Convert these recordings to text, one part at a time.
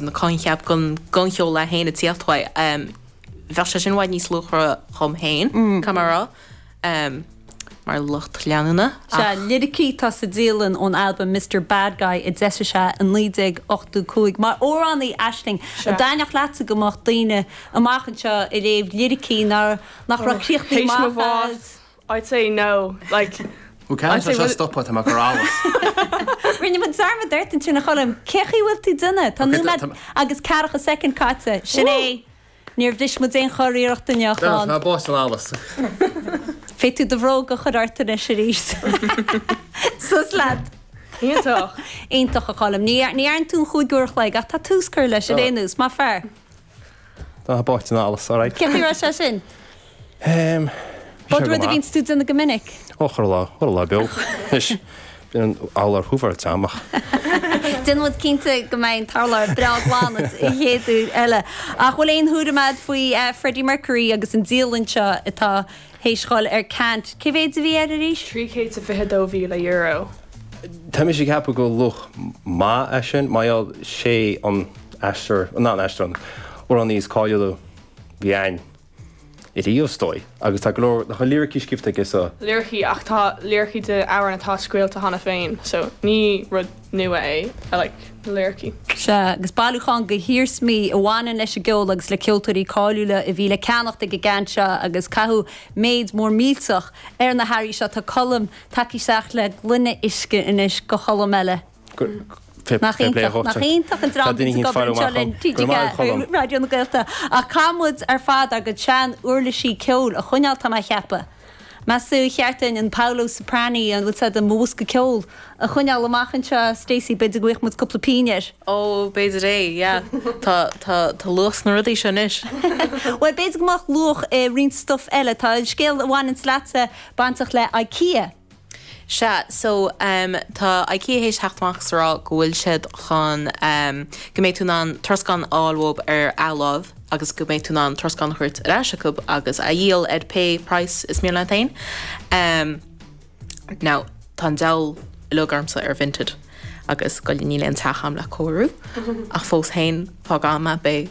an coincheap den ghancheol é féin ag tíocht uaidh. Bheadh sé sin i bhfad níos luachmhaire dhom féin, caithfidh mé a rá, mar lucht leanúna, ach. Sea, liricí atá sa dialann ón albam Mister Bad Guy a d'eisigh sé i 1985. Mar amhránaí, aisling? An dtaitneodh leatsa go mbeadh daoine amach anseo ag léamh liricí nach raibh críochnaithe amach fad is. I'd say no like Ok I'd tá say sé well stoptha tá mé ag cur allas. Rinne muid dearmad ort ansin a Choilm. Cén chaoi a bhfuil tú done? Tá Ok tá nóiméad tá mé. agus ceathracha soicind caite. Sin é. Níor bhris muid aon churiarracht inniu a Done tá Chon. mé báite in allas. Féadfaidh tú do bhróga a chur ort anois aríst. Suas leat. Iontach. Iontach a Choilm. Ní dhear- ní dhearna tú an chúig uair a chloig ach tá tús curtha leis ar aon nós. Maith fear. Tá báite in allas, alright. Cén chaoi a raibh sé sin? Ehm, bhí sé go maith. An rud é a bhíonns tú déanamh go minic. Ó, chuile lá, chuile lá beo. Anois, bíonn amhlaidh ar chúl an tseomra ach. Déanann muid cinnte go mbeidh an t-urlár breá glan an chéad uair eile. Ach bhfuil aon thuairim agat faoi Freddie Mercury agus an dialann seo atá Théis dhul ar ceant, cé mhéid a bhí air arís? €322,000. Tá mise ag ceapadh go bhfuil luach maith ar sin mar gheall sé an aisteoir, nó an aisteoir, an amhránaí is cáiliúla bhí againn ariamh is dóigh agus tá go leor de a liricí scríobhta aige so liricí ach tá liricí de amhráin atá scaoilte cheana féin so ní rud. nua é. I like na liricí. Sea, agus bailiúchán de hiarsmaí a bhaineann leis an gceol agus le ceoltóirí cáiliúla a bhí le ceannacht ag an gceant seo agus caitheadh méid mór millteach ar na hearraí seo. Tá Colm tagtha isteach le gloine uisce anois go Cholm eile. Nach iontach an dream atá ag obair anseo linn TG4, Raidió na Gaeltachta. Ach caithfidh muid ar fad ár gcuid sean-uirlisí ceoil a choinneáil, tá mé a cheapadh. Meastú cheart dúinn an Paolo Soprani, an bhfuil luach i mo bhosca ceoil, a choinneáil amach anseo, Stacey, b'fhéidir go bhfaighfeadh muid cúpla pínn air. Ó, b'fhéidir é, yeah. Tá, tá, tá luach sna rudaí seo anois. Bhuel, b'fhéidir go mbeadh luach i roinnt stuff eile. Tá an scéal a bhaineanns leatsa bainteach le Ikea. Sea, so, em, tá IKEA théis theacht amach 's a rá go bhfuil siad chun, em, go mbeidh tú in ann troscán a fháil uathub ar athláimh agus go mbeidh tú in ann troscán a thabhairt ar ais acub agus a dhíol ar pé praghas is mian leat fhéin. Em, now, tá an diabhal uilig ormsa ar Vinted agus, go leor, níl aon teach a'm le cóiriú ach fós féin, fág a'm é, beidh.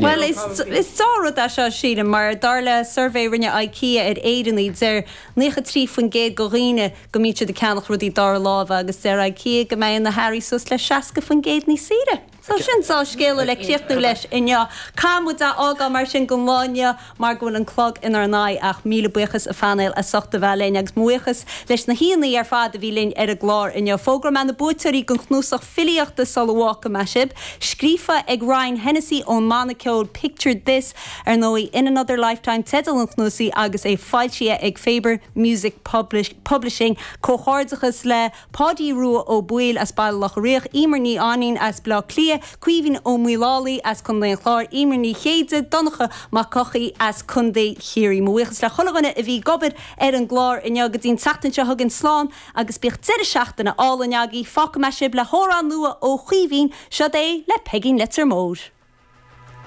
Bhuel, is dea-rud é seo, sílim, mar dar le suirbhé a rinne Ikea ar Éireannaigh, deir 93% de dhaoine go mbíonn siad ag ceannach rudaí dara láimhe agus deir Ikea go mbeidh na hearraí suas le 60% níos saoire. So sin dea-scéala le críochnú leis inniu. Caithfidh muid a fhágáil mar sin don lá inniu. mar go bhfuil an clog inár n-aghaidh ach míle buíochas a phainéal as ucht a bheith linn agus mo bhuíochas leis na haíonna ar fad a bhí linn ar an gclár inniu. Fógróidh mé na buaiteoirí don chnuasach filíochta sula bhfágfaidh mé sibh, scríofa ag Ryan Hennessy ón mbanna ceoil Picture This, ar ndóigh, In Another Lifetime teideal an chnuasaigh agus é foilsithe ag Faber Music Publishing. Comhghairdeachas le. Páidí Rua Ó Baoill as Baile Locha Riach, Eimear Ní Fhainín as Baile Átha Cliath, Caoimhín Ó Maolalaí as Contae an Chláir, Eimear Ní Chéide, Donncha Mac Eochaidh as Contae Chiarraí. Mo bhuíochas le chuile dhuine a bhí ag obair ar an gclár inniu. Go dtí an tseachtain seo chugainn, slán agus bíodh deireadh seachtaine álainn agaibh. Fágfaidh mé sibh le hamhrán nua ó Chaoimhín, seod é le Peigín Leitir Móir.